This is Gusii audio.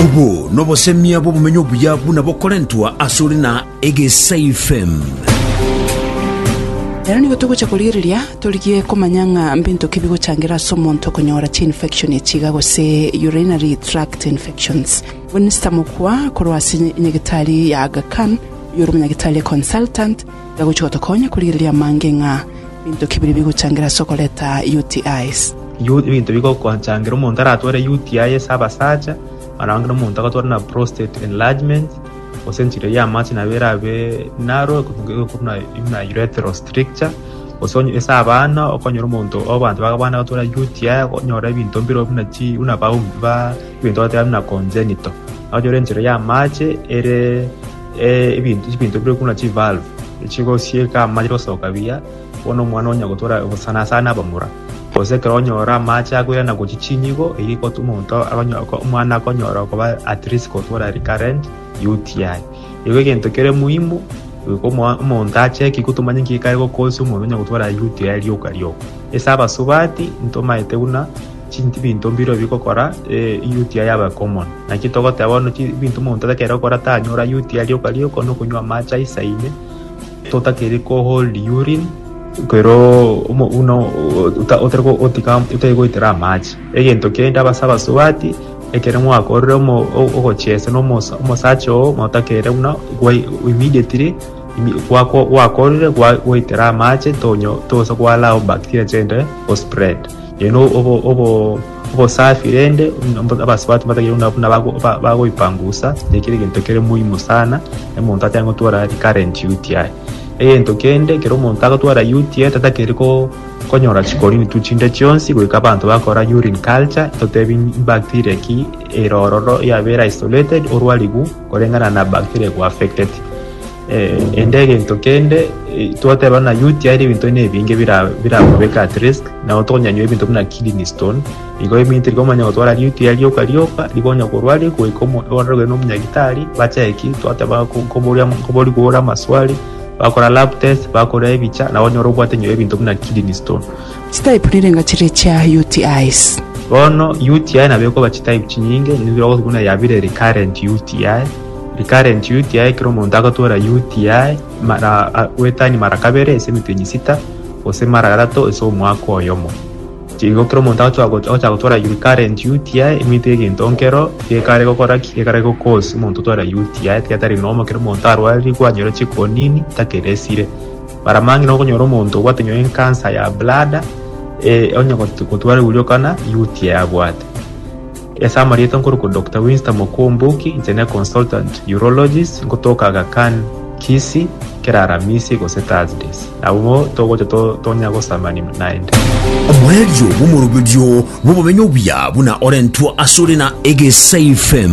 Obo nobosemia bw'obomenyo obuya buna bokorentwa asore na Egesaifem. Ero nigo togocha korigereria torigie komanya ng'a mbinto ki bigochangera ase omonto konyora chiinfection ya chiiga gose urinary tract infections. Winster Mokua korwa ase Nyagetari ya Aga Khan, oyore omonyagitari consultant, Gagochia gotokonya korigereria amange ng'a binto ki biria bigochangira ase okoreta UTIs. Ebinto bigochangira omonto aratware UTI ase abasacha, naro onye omonto agatwara na prostate enlargement, gose enchera ya amache nabo erabe narrow korwa buna urethral stricture, gose onye ase abana okonyora omonto abanto ba abana agatwara UTI okonyora ebinto mbire buna chi buna ebinto bagoteeba buna congenital. Okonyora enchera ya amache ere. Ebinto bire korwa chivalve echigosieka amache gosoka buya, bono omwana onya gotora sana sana abamura, gose ekero onyora amache akoirana gochia chinyigo eyio egotuma omonto omwana akonyora koba at risk gotwara recurrent UTI. Igo egento kere muhimu omonto acheki igo tomanye nki kare gokosia omonto onya gotwara UTI rioka rioka. Ase abasubati ntomanyete buna. Chinki binto mbirobio bigokora UTI yabe common? Naki togoteba bono binto omonto takeire gokora tanyora UTI rioka rioka onye okonywa amache aise ime totakeire ko hold urine ekero buna otari goitera amache. Egento kende ase abasubati ekero mwakorire ogochesa na omosacha oo motakeire buna immediately gwakorire gwaitera amache tosa koallow bacteria chende o spread. Rende obosafi rende, abasubati mbatagerwe nabu nabagoipangusa, nekere egento kere moimo sana omonto atari gotwara recurrent UTI. Egento kende ekero omonto agotwara UTI tatagete konyora chikorini tu chinde chionsi goika abanto bakora urine culture totebi bacteria ki ere ororo yabera isolated orwarigwe. koreng'ana na bacteria go affected ende egento kende twateba na UTI ere ebinto buna ebinge birakobeke at risk nabo tonyanywa ebinto buna kidney stone igo eminto eria omanya gotwara UTI rioka rioka nigo onya korwaria goika ororigwe na omonyagitari bacheck ki twateba koborigwe ore amaswali bakora lab test bakora ebicha nabo onyore obwate nonye ebinto buna kidney stone. Chitype nirenga chiria chia UTIs. Bono UTI nabo ekoba chitype chinyinge, nigo tokoroka buna yabire recurrent UTI. Recurrent UTI ekero omonto agotwora UTI mara goetania mara kabere ase emetenyi sita gose mara gatato ase omwaka oyomo. Igo ekero omonto agochia agochaka gotwora recurrent UTI omanyete egento nkero gekare gokora ki? Gekare go cause omonto otware UTI tiga tari normal ekero omonto arwarire kwanyora chikonini takeresire. Baramang'ina okonyora omonto obwate nyoo enkansa ya bladder, ee, onye got- gotwara euriokana, UTI abwate. Ase amarieta nkorokwa Doctor Winston Mokomboki, inche ne consultant urologist, nkotoka Aga Khan, Kisii, kera Aramisi gose Thursdays. Nabo togocha to- tonya gosamanina naende. Oborerio bw'omoroberio bw'obomenyo obuya buna orentwa asore na Egesaifem.